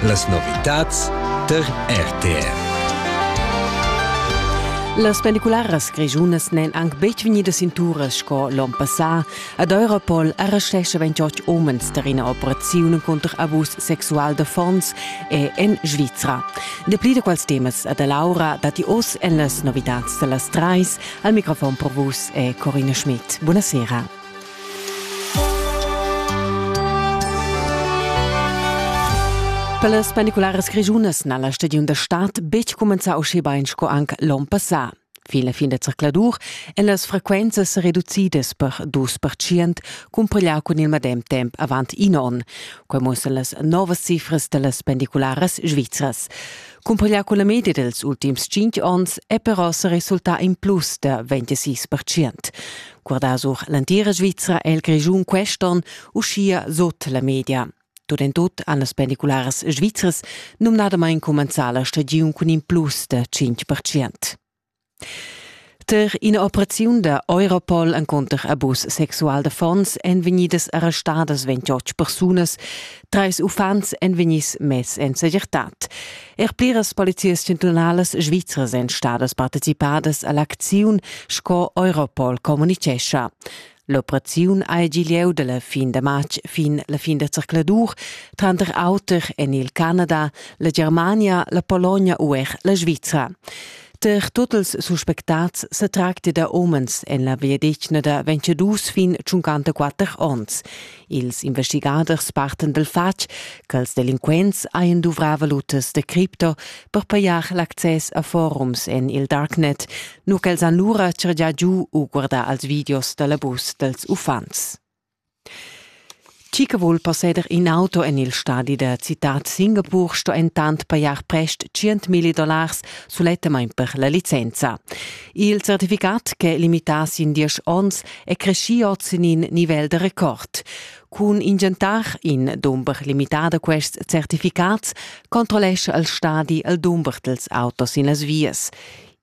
Las novitads tar RTR. Las pellicularas grischunas n'èn anc betg vegnidas sin turas sco l'onn passà. Ad Europol arrestescha 28 umens tar ina operaziun cunter abus sexual d'affons e en Svizra. Dapli da quels temas ad Laura datti oz en las novitads da las trais. Al microfon per vus è Corina Schmidt. Buonasera. Per las pendicularas grischunas n'ha la stagiun da stad betg cumenzà uschè bain sco anc l'onn passà. Fin la fin da zercladur èn las frequenzas sa reducidas per dus percient cumpareglià cun il medem temp avant in onn. Quai muossan las novas cifras da las pendicularas svizras. Cumpareglià cun la media dels ultims cinq onns è però sa resultà in plus da 26 percient. guardà sur l'entira Svizra e il Grischun quest'on, uschia sut la media. Tut en tut han las pendicularas svizras numnadamain cumenzà la stagiun cun in plus da 5%. Tar ina operaziun da Europol encunter abus sexual d'affons èn vegnidas arrestadas 28 persunas. Treis uffants èn vegnids mess en segirtad. Er pliras polizias chantunalas svizras èn stadas participadas a l'acziun, sco Europol communitgescha. L'operaziun ha gì lieu da la fin da matg fin la fin da zercladur, tranter auter en il Canada, la Germania, la Polonia u er la Svizra. Per tuts ils suspectats se tracti da umens en la viadetgna da 22 fin 54 onns. Ils investigaders partan dal fatg ch'als delinquents hajan duvrà valutas da cripto per pajar l'access a forums en il darknet, nu ch'els han lura chargià giu u guardà als videos da l'abus dals uffants. Chi che vul posseder in auto en il stadi da citat Singapur sto entant pajar prest 100.000 dollars sulettamain per la licenza. Il certificat che limitass in diesch onns è creschì oz sin in nivel da record. Cun ingentar in dumber limità da quests certificats controllescha il stadi il dumber dals autos in las vias.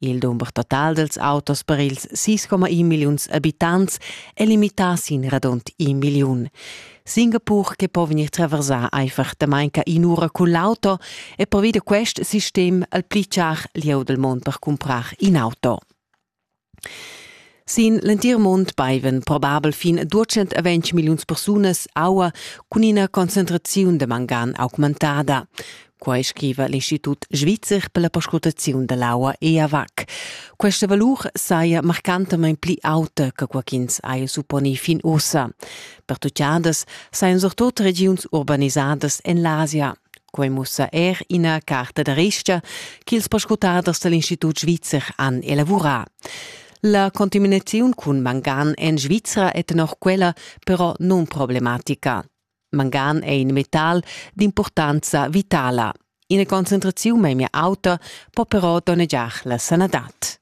Il dumber total dels autos per ils 6,1 milliuns abitants è limità sin radund 1 milliun. Singapur che po vegnir traversà einfach damain ca in'ura cun l'auto e provi da quest sistem al pli char lieu del mond per cumprar in auto. Sin l'entir mund baiven probabel fin 220 milliuns persunas aua cun ina concentraziun da mangan augmentada. Quai scriva l'Institut svizzer per la perscrutaziun da l'aua EAVAC. Questa valur saja marcantamain pli auta che qua ch'ins haja supponi fin ussa. Pertutgadas sajan surtut regiuns urbanisadas en l'Asia. Quai mussa er ina carta da resta ch'ils perscrutaders da l'Institut svizzer han elavurà. La contaminaziun cun mangan en Svizra è tenor quella però nunproblematica. Mangan è in metal d'impurtanza vitala. Ina concentraziun memia auta po però donnegiar la sanadad.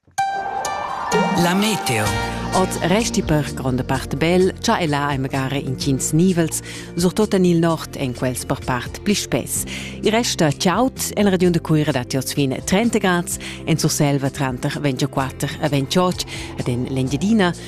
La meteo. Oz resti per gronda part bel, cha e là è magari intgins nivels, surtut en il nord en quels per part pli spess. Il resta ciaut en region de Cuira da Tios fin 30 grads, en Surselva tranter 24 e 28 ed en l'Engiadina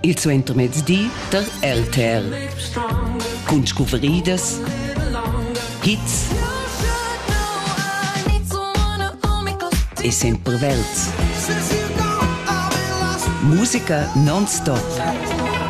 il suentermezdi tar LTR cun scuvridas, hits e sempre verds. Musica non-stop.